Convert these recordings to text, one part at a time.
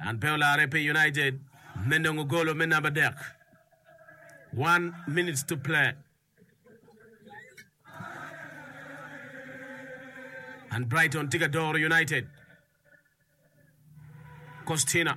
Man pe olarre pi United me nongo golo me namba adek. One minutes to play. And Brighton tye ka doro United. Costina.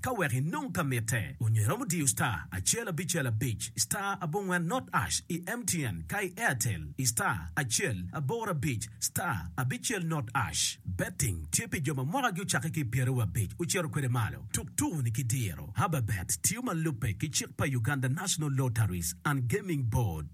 Ka wek inong ka mitte, onyo iromo diyo star acel abicel abic star abongwen not ash i MTN ka i Airtel i star acel aboro abic star abicel not ash. Betting tye pi jo ma mwakagi ocakke ki i pyeraryo abic ocito kwede malo. Tuk tuku-ni ki diro. Hababet tiyo ma lubbe ki cik pa Uganda National Lotteries and Gaming Board.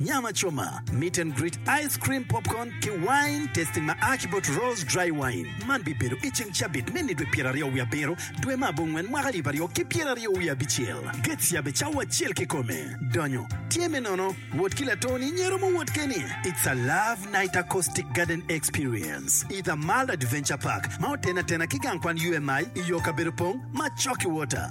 Nyam acoma, meet and greet, ice cream, popcorn, ki wine tasting ma a ki bot Rose Dry Wine. Man bibedo i ceng cabit me nidwe pyeraryo wiye abiro, dwe me abongwen, mwaka alip aryo ki pyeraryo wiye abicel. Gate cyabe cawa acel kikome. Donyo tye me nono. Wot ki latoni nyero muwot keni. It's a love night acoustic garden experience i The Mall Adventure Park ma otene atena ki gang kwan UMI i yo kabedo pong ma Chocky Water.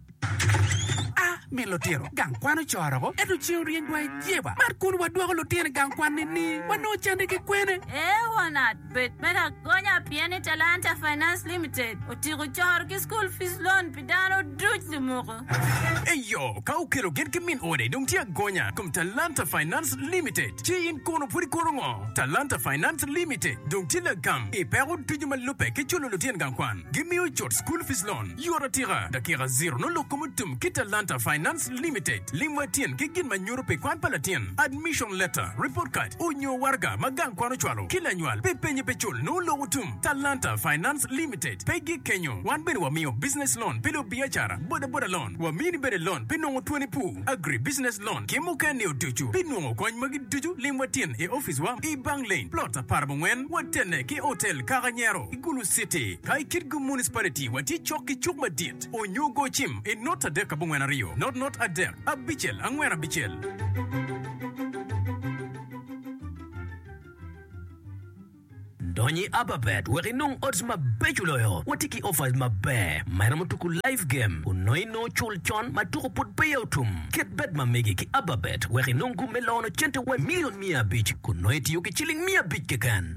A Mi lutino gang kwan ocoro-gu, ento ceng oryeny dwai i jeba. Mar kun wadwoko lutino i gang kwan ni ni wanongo cande ki kwene? Ee wanat, bed me lagonya pien ni Talanta Finance Limited otyeko coro ki school fees loan pi dano duc limuku. Eyo, ka okelo gin ki min ode dong tye agonya i kom Talanta Finance Limited. Ci in kono pud ikoto ngo? Talanta Finance Limited dong tye lagam i peko ducu ma lubbe ki culo lutino gang kwan. Gimiyo cut school fees loan. Yot atika, dakika ziro nongo lok kom otum ki Talanta Finance Limited. Lim wa tyen ki gin ma nyuto pi kwan pa latin, admission letter, report card, onyo waraga ma gang kwan ocwalo ki lanywal pi penye pe cul nongo lok otum. Talanta Finance Limited pe gik kenyo, wan bene wamiyo business loan pi lubiacara, boda boda loan, wamini bene loan pi nongo twoni pu, agri business loan ki muken nio ducu. Pi nongo kony magi ducu lim wa tyen i office wa i Bang Lane, plot apar bongwen, watene ki hotel Kaka Nyero. Bulu City, ka i Kitgum Municipality watye cok ki cuk madit onyo go cim i not adek abongwen aryo, not not adek abicel angwen abicel. Dony i Ababet wek inong odds mabeco loyo, watye ki offers maber ma iromo tuku live game kun nongo inongo cul con ma tuku pud peya otum. Ket bet ma megi ki Ababet wek inong gum me lono cente wa milion miya abic kun nongo itiyo ki ciling miya abic keken.